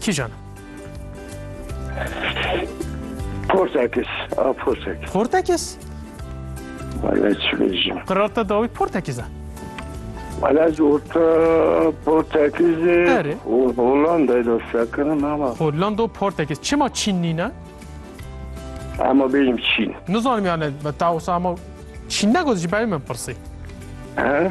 Kîjan e? Portekis. A Portekis. Portekis? Wala çi bêjim. Qirarta dawî Portekis e. Wala ez orta Portekizê Erê. û Hollandayê de sekirim ama. Hollanda û Portekis. Çima Çîn nîne? Ama bêjim Çîn. Nizanim yani ta wisa ama Çîn negot ji ber min pirsî. He?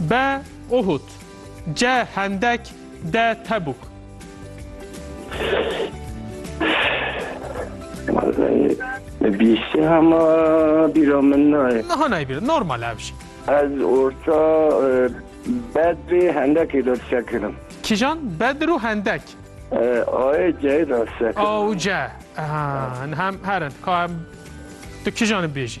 B Uhud C Hendek D Tebûk Bîşê hema bîra min nayê. Niha nayê bîra, normal ev jî. Ez orta e, Bedrê Hendekê de dişe kirim. Kîjan? Bedr û Hendek. E, ayê ceyê de dişe kirim. A û ce. Hem herin. Ka em tu kîjan bêjî?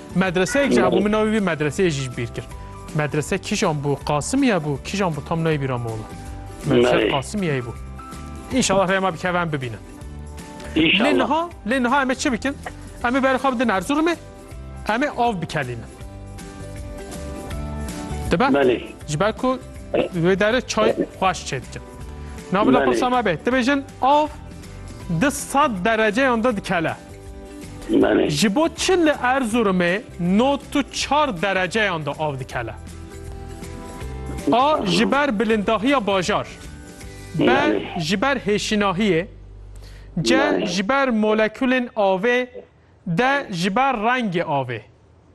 Medreseyek jî hebû min navê wî medreseyê jî ji bîr kir. Medrese kîjan bû Qasimiye bû kîjan bû tam nayê bîra min wala. Medrese Qasimiyeyê bû. İnşallah rê me bikeve em bibînin. Lê niha lê niha em ê çi bikin? Em ê berê xwe bidin Erzurumê em ê av bikelînin. Dibe? Belê. Ji ber ku wê derê çay xweş çê dikin. Navila pirsa me bê. Dibêjin av di sed dereceyan de dikele. Ji bo çi li Erzurumê not û çar dereceyan de av dikele? A ji ber bilindahiya bajar B ji ber hêşinahiyê C ji ber molekulên avê D ji ber rengê avê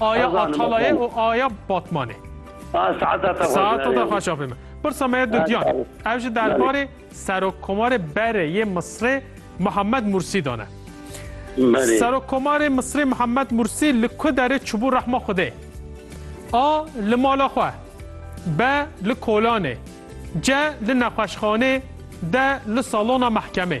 Aya Atalayê û aya Batmanê. Saeta te Saeta te xweş afê me. Pirsa me dudiyan e. Ev ji derbarê Serokkomarê Berê yê Misrê Mihemed Mursî dan e. Serokkomarê Misrê Mihemed Mursî li ku derê çibû rehma Xwedê? A li mala xwe. B li kolanê. C li nexweşxanê. D li salona mehkemê.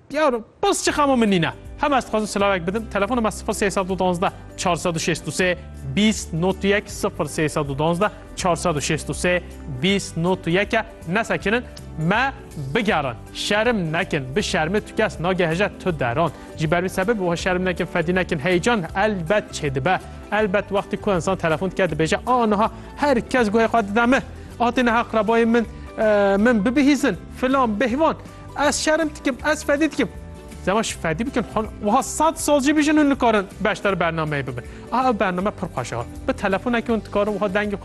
Yaro, bas çi xamo min nîne. Hema ez dixwazim silavek bidim, telefona me sifir sey sed û duwazdeh çar sed û şêst û sê bîst not û yek sifir sey sed û duwazdeh çar sed û şêst û sê bîst not û yek e. Nesekinin me bigerin. Şerim nekin, bi şermê tu kes nagehije tu deran. Ji ber vî sebebê wiha şerim nekin, fedî nekin. Heyecan elbet çêdibe. Elbet wextê ku insan telefon dike dibêje a niha her kes guhê xwe dide min. Atê niha qrebayên min min bibihîzin, filan, bêhvan. Ez şerm dikim, ez fedî dikim. Zema ji fedî bikin hon wiha sed sal jî bijin hûn nikarin beşdar bernameyê bibin. A ev bername pir xweş e. Bi telefonekê hûn dikarin wiha dengê xwe